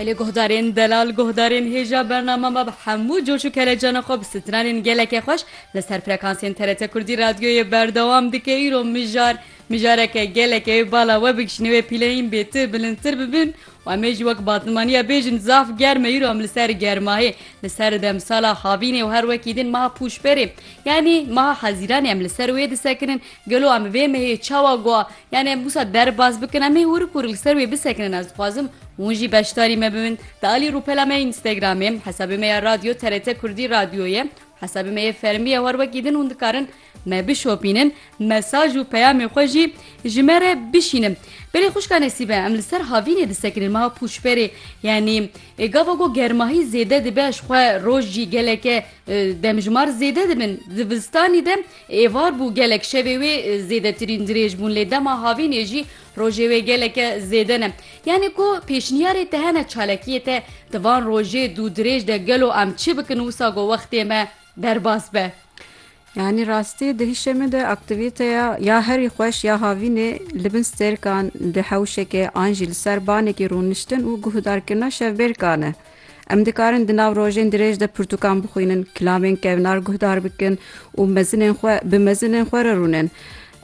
Belê guhdarên delal, guhdarên hêja bername me bi hemû coş û kelecana xwe bi stranên gelekê xweş li ser frekansên TRT Kurdî radyoyê berdewam dike îro mijar mijareke gelekê wê bala we bikişîne wê pîleyîn bêtir bilindtir bibin û em ê jî wek batmaniya bêjin zaf germ e îro em li ser germahê li ser demsala havînê û her wekî din meha pûşberê yanî meha hezîranê em li ser wê disekinin Gelo em vê mehê çawa gua yanê em wisa derbas bikin em hê hûrik hûrik li ser wê bisekinin ez dixwazim hûn jî beşdarî me bibin di alî rûpela me yê înstagramê hesabê me ya radyo TRT kurdî radyo ye hesabê me yê fermî ye war wekî din hûn dikarin me bişopînin mesaj û peyamê xwe jî ji me re bişînin belê xwişka nesîbe em li ser havînê disekinin meha pûçperê yanî ê gava got germahî zêde dibe ji xwe roj jî geleke demjimar zêde dibin di zivistanî de Êvar bû gelek şevê wê zêdetirîn dirêj bûn lê dema havînê jî rojê wê geleke zêde ne. Yanî ku pêşniyarê te hene çalakiyê te di van rojê dû dirêj de gelo em çi bikin wisa ku wextê me derbas be? Yanî rastî di hişê min de aktîvîteya ya herî xweş ya havînê li bin stêrkan, li hewşekê an jî li ser banekî rûniştin û guhdarkirina şevbêrkan e. Em dikarin di nav rojên dirêj de pirtûkan bixwînin, kilamên kevnar guhdar bikin û mezinên xwe bi mezinên xwe re rûnin.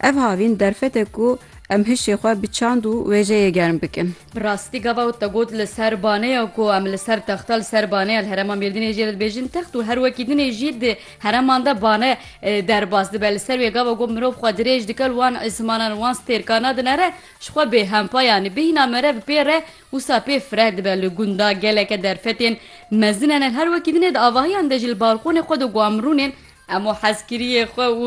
Ev havîn derfet e ku em hişê xwe bi çand û wêjeyê germ bikin. Bi rastî gava wê te got li ser baneya ku em li ser texta li ser baneya li herêma Mêrdînê jê dibêjin text û her wekî din ê jî di herêman de bane derbas dibe. Li ser wê gava ku mirov xwe dirêj dike li wan zimanan wan stêrka nadine re ji xwe bêhempa yanî bihîna mere bi pê re Wisa pê fireh dibe li gunda geleke derfetên mezin ene li her wekî din e di avahiyan de jî li balqonê xwe de guam rûnên em û hezkiriyê xwe û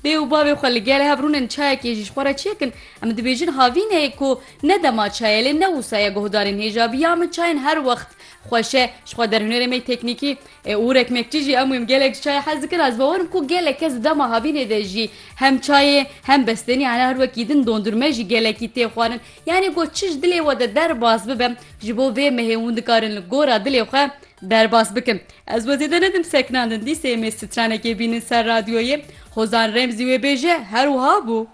dê û bavê xwe li gel hev rûnin çayekê jî ji xwe re çi yekin em dibêjin havîneyê ku ne dema çayê lê ne wisa ye guhdarên hêja bi ya min çayên her wext xweş e ji xwe der hunerê me teknîkî û û rekmekçî jî em wîm gelek ji çayê hez dikin ez bawer im ku gelek kes di dema havînê de jî hem çayê hem bestenî ene her wekî din dondurme jî gelekî tê xwarin Yanî ku çi ji dilê we de derbas bibe, ji bo vê mehê hûn dikarin li gora dilê xwe derbas bikin. Ez we zêde nedim sekinandin, dîsê em ê stranekê bînin ser radyoyê. Hozan Remzî wê bêje, Her wiha bû.